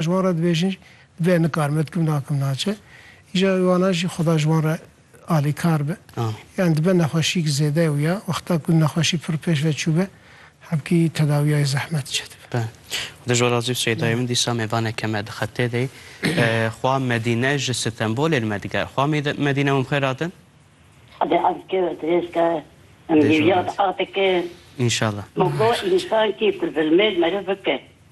Ji wan re dibêjin be nikarim me dikim nakim naçe. Îja wê wana jî xuda ji wan re alîkar be. Yan dibe nexweşîk zêde û ya wexta ku nexweşî pir pêş ve çûbe hemkî tedawiyayê zehmet çê dibe. Be. Xuda ji we razî be Seyda min dîsa mêvanê ke me di xetê de ye xwa Medîne ji Stenbolê li me diger. Xwa Medîne min bixêra din. Xwedê azike û dirêz ke em hêviya diaxike. Înşallah. Moko însan kî pir zilmêr meriv bike.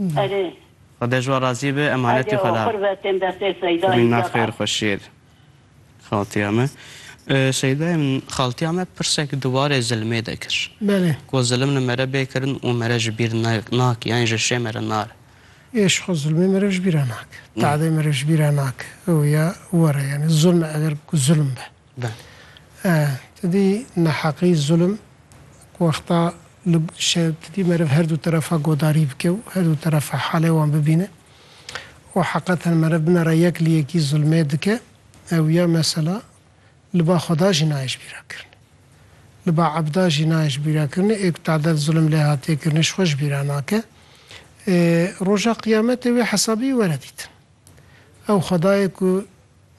Erê. Xwedê ji we razî be emanetê xwe da. Timî na xêr xwe şêr xaltiya me. Şeydayê min xaltiya me pirsek di warê zilmê de kir. Belê. Ku zilim li mere bê kirin û mere ji bîr nake yanî ji şê mere nare. Ê ji xwe zilmê mere ji bîra nake. Tadê mere ji bîra nake. Ew ya were yanî zilm eger ku zilm be. Ti dî neheqî, zulm, ku wexta li ti dî meriv her du terefa godarî bike û her du terefa halê wan bibîne û heqeten meriv binera yek li yekî zulmê dike ew ya mesela li ba Xweda jî nayê ji bîr re kirinê. Li ba ebda jî nayê ji bîr re kirinê. Ê ku tadel zulm lê hatiye kirinê ji xwe ji bîr re nake. Roja qiyametê wê hesabî were dîtin. Ew Xwedayê ku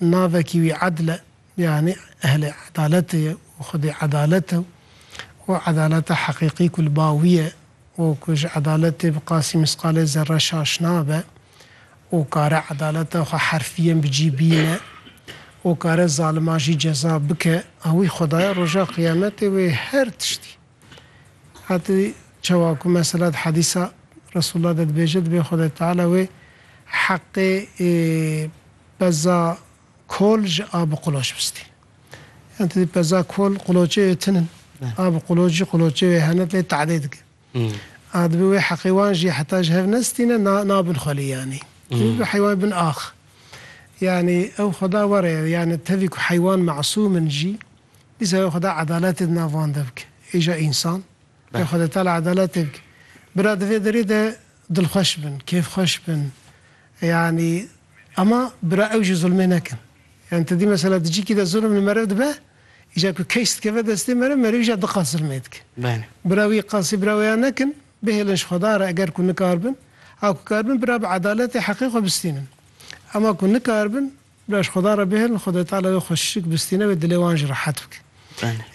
navekî wî Edl e, yanî ehlê edaletê ye û Xwedê edalet e û edaleta heqîqî ku li ba wî ye û ku ji edaletê bi qasî misqalê zerre şaş nabe û kare edaleta xwe herfîyên bi cî bîne û kare zaliman jî ceza bike, wî Xwedayê Roja Qiyametê wê her tiştî. Hatî çawa ku mesela di hedîsa Resûlullah de dibêje, dibê Xwedayê Teala wê heqê ê peza kol ji a bi quloç bistî. Yan tu dî peza kol quloçê wê tin in. A bi quloç jî quloçê wê hene lê te'dê dike. A dibê wê heqê wan jî heta ji hev nestîne na nabin xwelî yanî. Tu dibî heywan bin ax. Yanî ew Xweda were ye. Yanî tevî ku heywan mesûm in jî, Dîsa ya Xweda edaletê di nav wan de bike. Hêja însan, ya Xweda Teala edaletê bike. Bira di vê derê de dilxweş bin, kêfxweş bin. Yanî ema bira ew jî zulmê nekin. Yanî tu dî mesela di cîkî de zulm li meriv dibe, îcar ku case dikeve destê meriv, merivî jî diqas zulmê dike. Bira wî qasî bira wê ya nekin, bihêlin ji Xweda re eger ku nikaribin. Ha ku karibin bira bi edaletê heqê xwe bistînin. Ema ku nikaribin Baş Xweda re bihêlin, Xwedê Teala wê xweşik bistîne wê dilê wan jî rehet bike.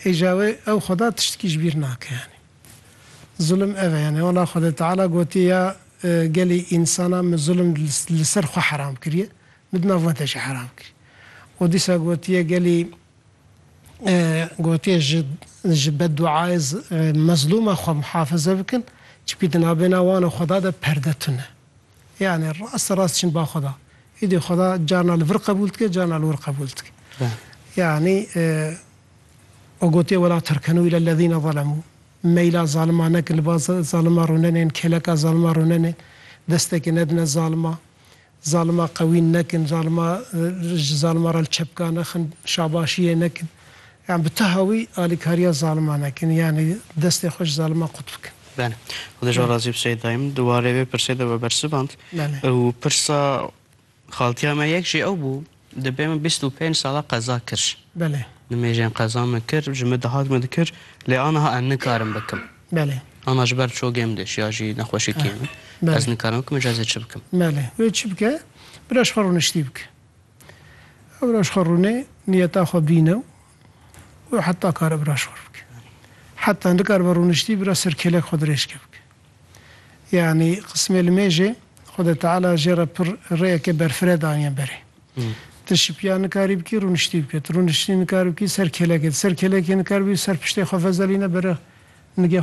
Hêja wê ew Xweda tiştikî ji bîr nake yanî. Zulim ev e yanî wala Xwedê Teala gotiye ya gelî însanan min zulim li ser xwe heram kiriye, min di nav we de jî heram kiriye. Û dîsa gotiye gelî gotiye ji ji beddûayê mezlûma xwe muhafize bikin, çimkî di nabêna wan û Xweda de perde tune. Yanî rast rast çin ba Xweda. Îdî Xweda carna li vir qebûl dike, carna li wir qebûl dike. Yanî o gotiye wela tirkenû île lezîne zelemû. Meyla zaliman nekin, li ba zaliman rûnenên, kêleka zaliman rûnenên, destekê nedine zaliman, zaliman qewîn nekin, zaliman ji zaliman re li çepka nexin, şabaşiyê nekin. Yan bi teha wî alîkariya zaliman nekin, yanî destê xwe ji zaliman qut bikin. Belê. Xwedê ji we razî be Seyîd Dayim. Di warê vê pirsê de we bersivand û pirsa xaltiya me yek jî ew bû, Dibê min bîst û pênc sala qeza kir. Belê. Nimêjên qeza min kir, ji min dihat min dikir, lê aniha em nikarim bikim. Belê. Ana ji ber çokê min diş ya jî nexweşîkiyê min. Ez nikarim bikim, ji ez ê çi bikim? Belê. Wê çi bike? Bira ji xwe rûniştî bike. Ebraş xwe rûnê niyeta xwe bîne û heta kar Ebraş xwe rûbike. Heta nikaribe rûniştî bira ser kêlek xwe dirêjke bike. Yanî qismê li mêjê Xwedê Teala jê re pir rêyeke berfireh daniye berê. Ti şipiya nikarî bikî rûniştî bike. Ti rûniştî nikari bikî ser kêlekê. Ti ser kêlekê nikari bikî ser piştê xwe vezelîne bere nigê xwe